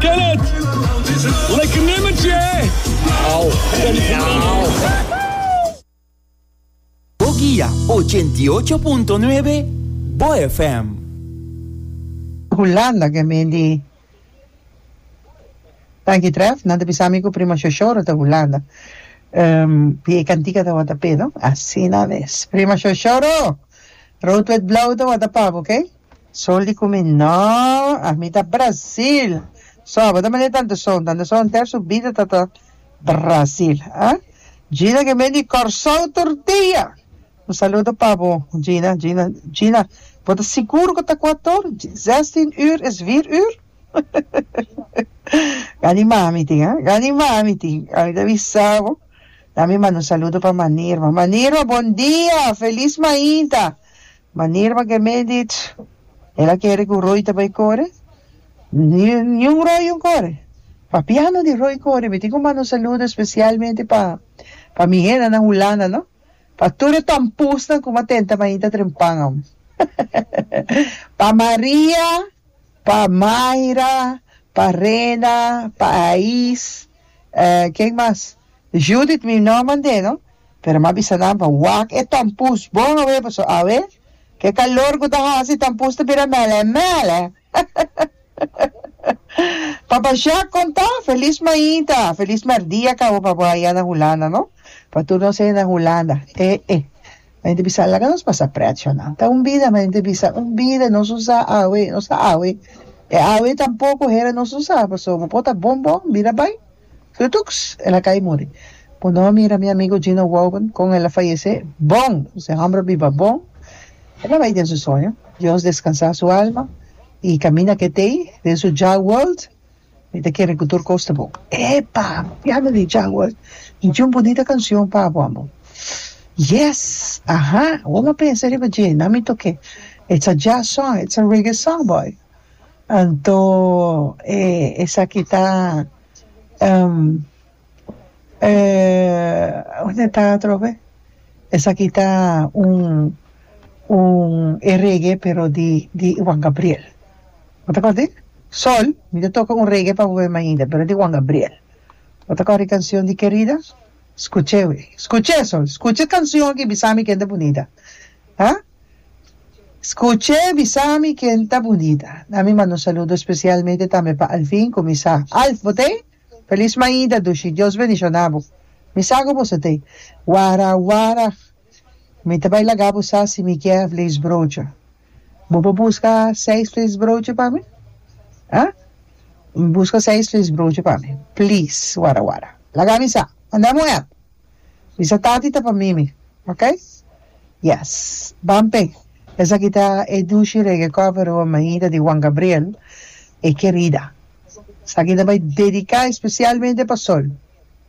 Kenneth, like nummer tje. Bo guia ochenta i ocho punto nuebe Bo FM. Hulanda ke men di Tanki Tref nan ta bisa mi ku Primo Shoshoro ta Hulanda di e kantika tabata Pedro asina mes Primo Shoshoro Rood wit Blauw tabata pabo ok. Sol di kumi no a mi ta Brasil so abo ta mane tanto son tanto son henter su bida ta ta Brasil a Gina ke men di Kòrsou tortilla un saludo pa bo Gina Gina Gina bo ta sigur ku ta ku ator zestien uur is vier uur gani mami tin a gani mami tin a mi ta bisa bo dami manda un saludo pa Manirma Manirma bon dia felis mainta Manera pa Gemeen dit, el a kere ku Roy ta bai kore. Niun Roy un kore. Papiano di Roy kore. Mi tin ku manda un saludo espesialmente pa pa mi hendanan Hulanda, no. Pa tur e tompusnan ku m'a tenta mainta trempan aún. Pa Maria, pa Mayra, pa Rena, pa Ais, eh, ken mas? Judith mi no mand'é no, pero m'a bisa nan pa wak e tampus bon awé paso awé ke kalor ku ta hasi e tampus ta bira mèlè mèlè Papa Jacques konta, Felis mainta, felis mèrdia kaba pa bo aya na Hulanda no, pa tur nos ey na Hulanda e e Men ta bisa laga nos pasa prèt sho nan, ta un bida men ta bisa un bida nos usa awé, nos ta awé e awé tampoko hera nos usa paso bo por ta bon bon bira bai. Tutuks! El a kai muri. Ku no mira mi amigu Gino Woben kon el a fayesé bon! Nos e hòmber a biba bon. El a bai den su soño. Dios deskansá su alma i kaminda ketei den su Jah World. Mi ta kere ku tur kos ta bon. Epa! Piano di Jah World. Mi tin un bunita kanshon pa bo, amor. Yes! Aha! Wou a pensa riba dje? Nan mi tok'é. It's a Jah song. It's a reggae song, boy. Anto e esaki ta um e hunde ta atrobe esaki ta un un e reggae pero di di Juan Gabriel bo ta kòrdi sol mi ta toka un reggae pa bo meme ainda pero di Juan Gabriel bo ta kòrdi e kanshion di kerida skuche we skuche sol skuche e kanshon aki bisami kende bunita ha. Scuche bisami ken ta bunita na mi manda un saludo especialmente tambe pa Alvin cu mi sa Alf bo tey Feliz maida dushi Dios bendiciona bo mi sa cu boso tey wara wara mi ta bay laga bo sa si mi kier vleesbroodje bo por busca seis vleesbroodje pa mi ah busca seis vleesbroodje pa mi please wara wara laga mi sa mandami un app. Bisa tati ta pa mimi ok. Yes ban pe esaki ta e dushi reggae cover Rua Mahida di Juan Gabriel e kerida esaki ta bai dedica especialmente pa Sol.